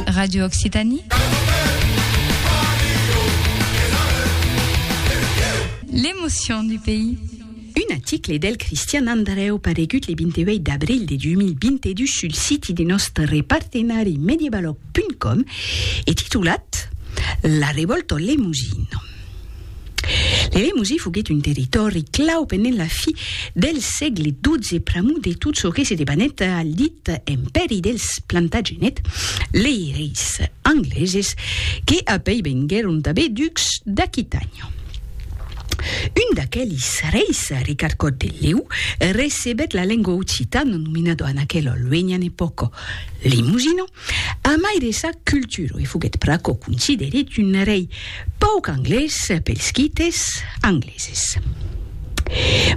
Radio Occitanie. L'émotion du pays. Un article del Cristian Andreu paregut le 28 d'abril de 2022 sul siti de nostre repartenari medievalog.com e titulat La revolta Lemosino. L'eremosi foguèt un territòri clau pendent la fi del sègle xii pr'amor de tot çò que se debanèt al dit Empèri dels Plantagenèt, lei reis angleses que apèi venguèron tanben ducs d'Aquitània. Un d'aquelis reis, Ricard Còt de Lèu, recebèt la lengua occitana nominada en aquela luenha epòca Limosino, A mai de sa cultura, e foguèt pr'aquò considerit un rei pauc anglés pels quites angleses.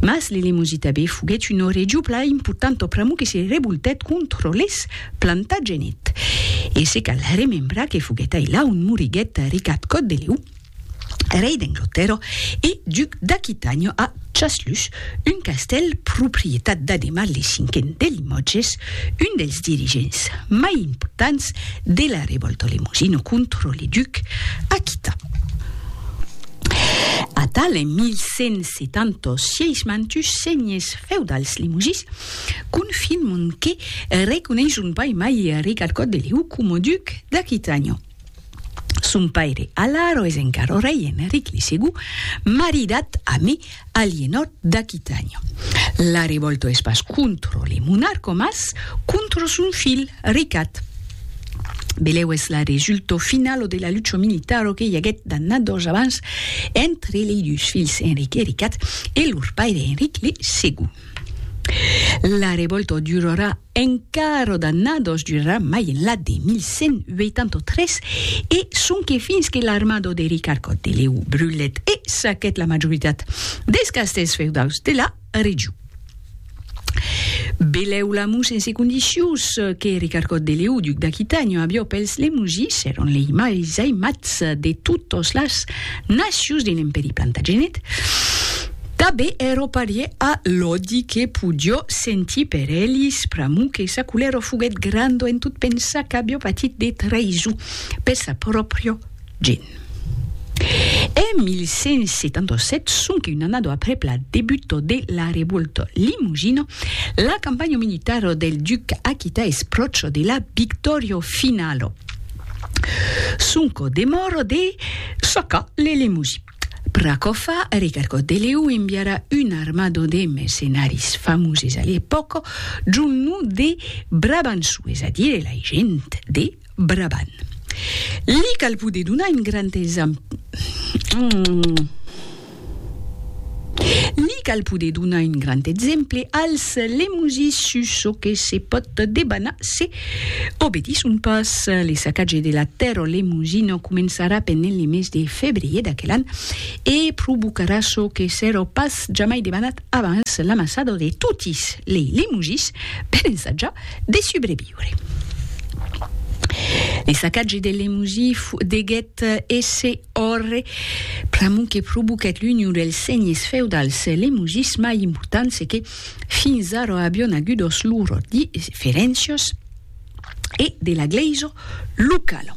Mas le Lemosi tabé foguèt una region plan importanta pr'amor que se revoltèt contra les Plantagenets, e se cal remembrar que foguèt ailà ont moriguèt Ricard Còt de Leu, rei d'Englotèrra e duc d'Aquitània a Chaslus, un castèl proprietat d'Ademar le Cinquen de Limòtges, un dels dirigents mai importants de la revòlta lemosina contra le duc aquità. Atal en 1176 mantus senhes feudals limosins confirman que reconeisson pas mai Ricard Còt de Lèu coma duc d'Aquitània. Son paire Alaro es encara rei Eneric li Segon, maridat a mi Alienor d'Aquitània. La revòlta es pas contra li monarca mas contra son filh Ricat. Belèu es la resulta finala de la lucha militara que i aguèt d'annadas abans entre lei dus filhs Enric e Ricat e lor paire Enric li Segon. La revòlta durarà En carro d'annados durarà mai enlà de 1183 e sonque fins que l'armado de Ricard Còt de Lèu brulèt e saquèt la majoritat dels castèls feudaus de la region. Belèu Lamus en segon disius que Ricard Còt de Lèu, duc d'Aquitània, avió pels Lemusis, èran lei mai aimats de totas las nacions de l'Empèri Plantagenet. Tabé ero parier a l'òdi que podió sentir per elis, pr'amor que sa colèro foguèt grando en tot pensar qu'avió patit de traïson per sa pròpria gent. En 1177, sonque un annado aprèp la debuta de la Revolta Limosina, la campanha militara del duc aquità es pròcha de la victòria finala. Sonque demòra de sacar le Limousin. Pracòfa, Ricardo Deleu enviara un armado de mercenaris famoses a l'epòca john nom de Brabanço, es a dire la gent de Brabant. Li cal poder donar un grand Li cal poder donar un grand exemple als lemosis sus çò que se pòt debanar se Obedisson pas, le sacatge de la Terra Lemusina començarà pendent le mes de febrier d'aquel an e provocarà çò que s'èra pas jamai debanat abans, l'amassada de totis lei Lemusis per ensajar de subreviure. Le sacatge del Lemusi deguèt èsser òrre pr'amont que provoquèt l'union dels senhes feudals Lemusis mai importants e que, Fins ara avion agudos lor diferéncias e de la gleisa locala.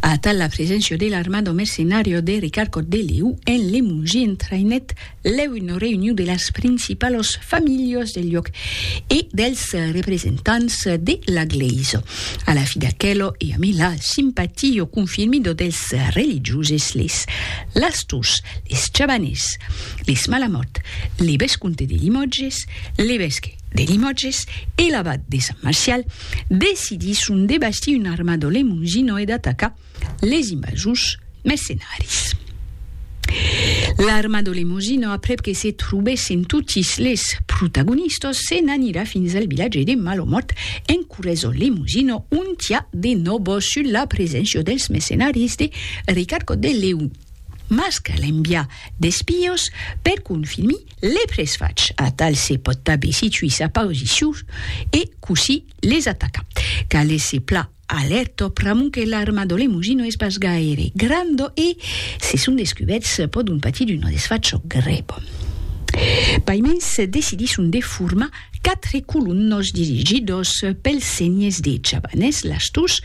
Atal la preséncia de l'armado mercenario de Ricard Cot de Leu en Lemongie entrainèt lèu una reunion de las principalas familhas del lloc e dels representants de la gleisa. A la fi d'aquela e amé la simpatia confirmida dels religioses les lastors, les chabaners, les Malamòt, l'evescomte de Limòtges, l'evesque de Limòtges e l'abat de Sant Marcial decidisson de bastir un arma do Lemousino e d'atacar les invasors mercenaris. L'arma do Lemousino, aprèp que se trobèssen totis les protagonistas, se n'anirà fins al vilatge de Malomòt en corrès do Lemousino, ont i a de nòbos sus la preséncia dels mercenaris de Ricard Cot de Lèu. Mas cal enviar d'espions per confirmir les tres fachs, atal se pòt tanben situir sa posicion e cossir les atacar. Cal èsser pla alèrta pr'amont que l'arma de l'emoji no es pas gaire granda e, se son descubèrts, pòdon patir d'una desfacha grèva. Paimens decidisson de formar Quatre colonhs dirigidos pels senhers de Chabanès, Lastús,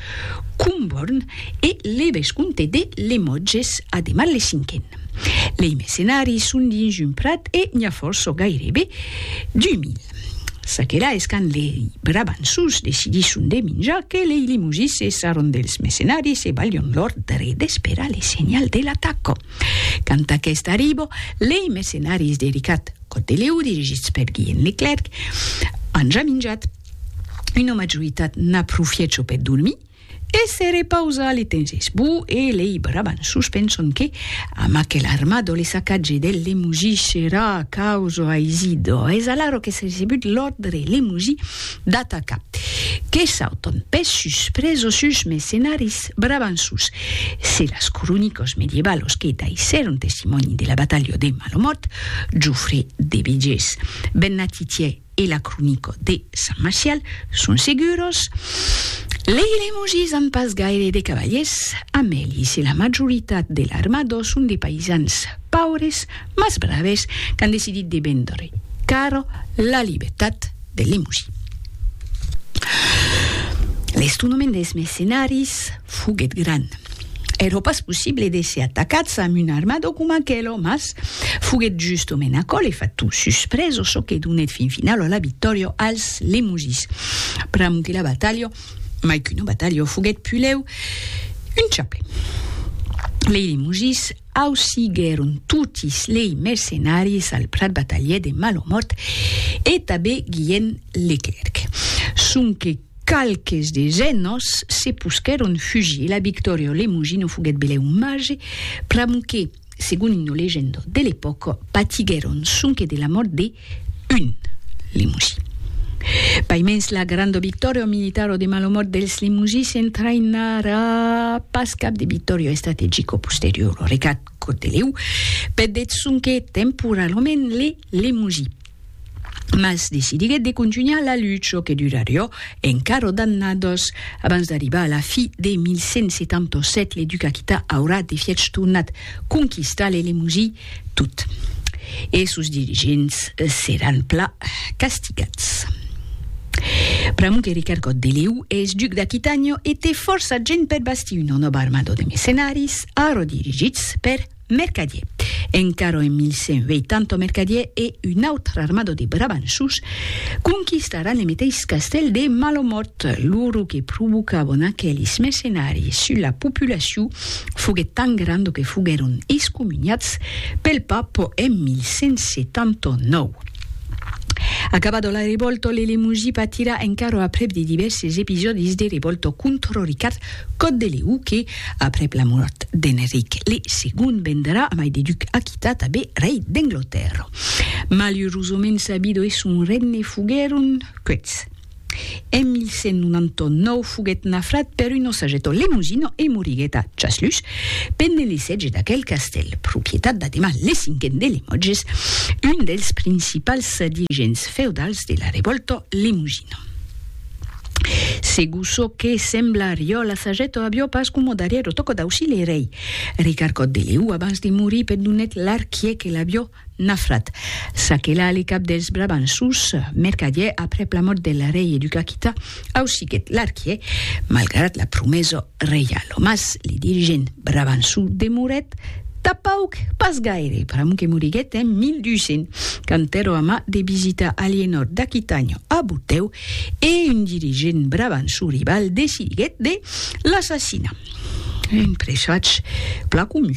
Comborn e levescomte de Lemotges, Ademar le Cinquen. Lei mercenaris son dins un prat e n'i a fòrça, gairebe 2000. Çaquelà es quand lei Brabançons decidisson de minjar que lei Limosís se sarron dels mercenaris e balhon l'òrdre d'esperar le senhal de l'ataca. Quand aqueste arriba, lei mercenaris de Ricat, Cotelèu, dirigits per Guilhèm Leclèrc, an ja minjat. Una majoritat n'aprofièt çò per dormir e se repausar le temps esbó e lei brabanços penson que, amb aquel armado, le sacatge del Lemoji serà causa aisida. Es alara qu'es recebut l'òrdre Lemoji D'atacar. Que sauton pes sus presosus mercenaris brabançus. Se las cronicos medievalos que daissèron testimòni de la batalha de Malomòrt, Jofré de Begés, Bernat Titier e la cronico de Sant Marcial, son seguros, lei Lemogis an pas gaire de cavaliers, Amèlis e la majoritat de l'armador son de païsans paures mas braves qu'an decidit de véndre caro la libertat. de Lemosí. L'estonament des mercenaris foguèt grand. Èra pas possible d'èsser atacats amb un armador coma aquelo, mas foguèt justament aquò l'efat tot suspreso çò que donèt fin finau a la victòria als Lemosís. Pr'amor que la batalha, mai qu'una batalha, foguèt pulèu un chaple. Lei Lemosís Ausiguèron totis lei mercenaris al prat batalhèr de Malomòrt e tabé Guilhèn Leclèrc. Sonque qualques des enòs se posquèron fugir e la victòria au Lemosin o foguèt belèu marge pr'amor que, segon una legenda de l'epòca, patiguèron sonque de la mòrt de 1. Limouji. Paimens la granda victòria militara o de malomòrt dels Limouji s'entraïnarà pas cap de victòria estrategica o posteriora, recat Corteliu, per deth sonque temporalament les Limouji, mas decidiguèt de contunhar la lucha que durariá encara d'annadas abans d'arribar a la fi de 1177 le duc aquità aurà de fièch tornat conquistar les Limouji Tot e sos dirigents seràn plan castigats. Pr'amor que Ricard Còt de Lèu es duc d'Aquitània e té fòrça gent per bastir una nòva armada de mercenaris, ara dirigits per Mercadier. Encara en 1180 Mercadier e una autra armada de brabanços conquistaràn le meteis castèl de Malomòrt. Lo ruc que provocavan aquelis mercenaris sus la populacion foguèt tan granda que foguèron excomuniats pel Papa en 1179. Acabada la revòlta, l'Elemosí patirà encara aprèp de divèrses episòdis de revòlta contra Ricard Còt de Lèu que, aprèp la mòrt d'Enric le Segond, vendrà a mai de duc Aquità, tanben rei d'Anglatèrra. Malurosament sa vida e son regne foguèron quèths. En 1199 foguèt nafrat per un osageto lemosino e moriguèt a Chasluç, pendent le sètge d'aquel castèl, propietat d'Ademar le Cinquen de Lemotges, un dels principals dirigents feudals de la revòlta lemosina. Segur çò que sembla ariò, l'asageto avió pas coma darrièro tòca d'aucir le rei. Ricarcòt de Leu, abans de morir, pendonèt l'arquièr que l'avió Nafrat, Sakela le cap dels Brabançons, mercadièr aprèp la mòrt del rei educakita, ausiguèt l'arquièr, malgrat la promesa reiala. Mas le dirigent brabançon demorèt tapauc pas gaire, pr'amor que moriguèt en 1200, quand èrò amar de visitar Alienòr d'Aquitània a Botèu e un dirigent brabançon rival decidiguèt de l'assassinar, un presatge plan comun.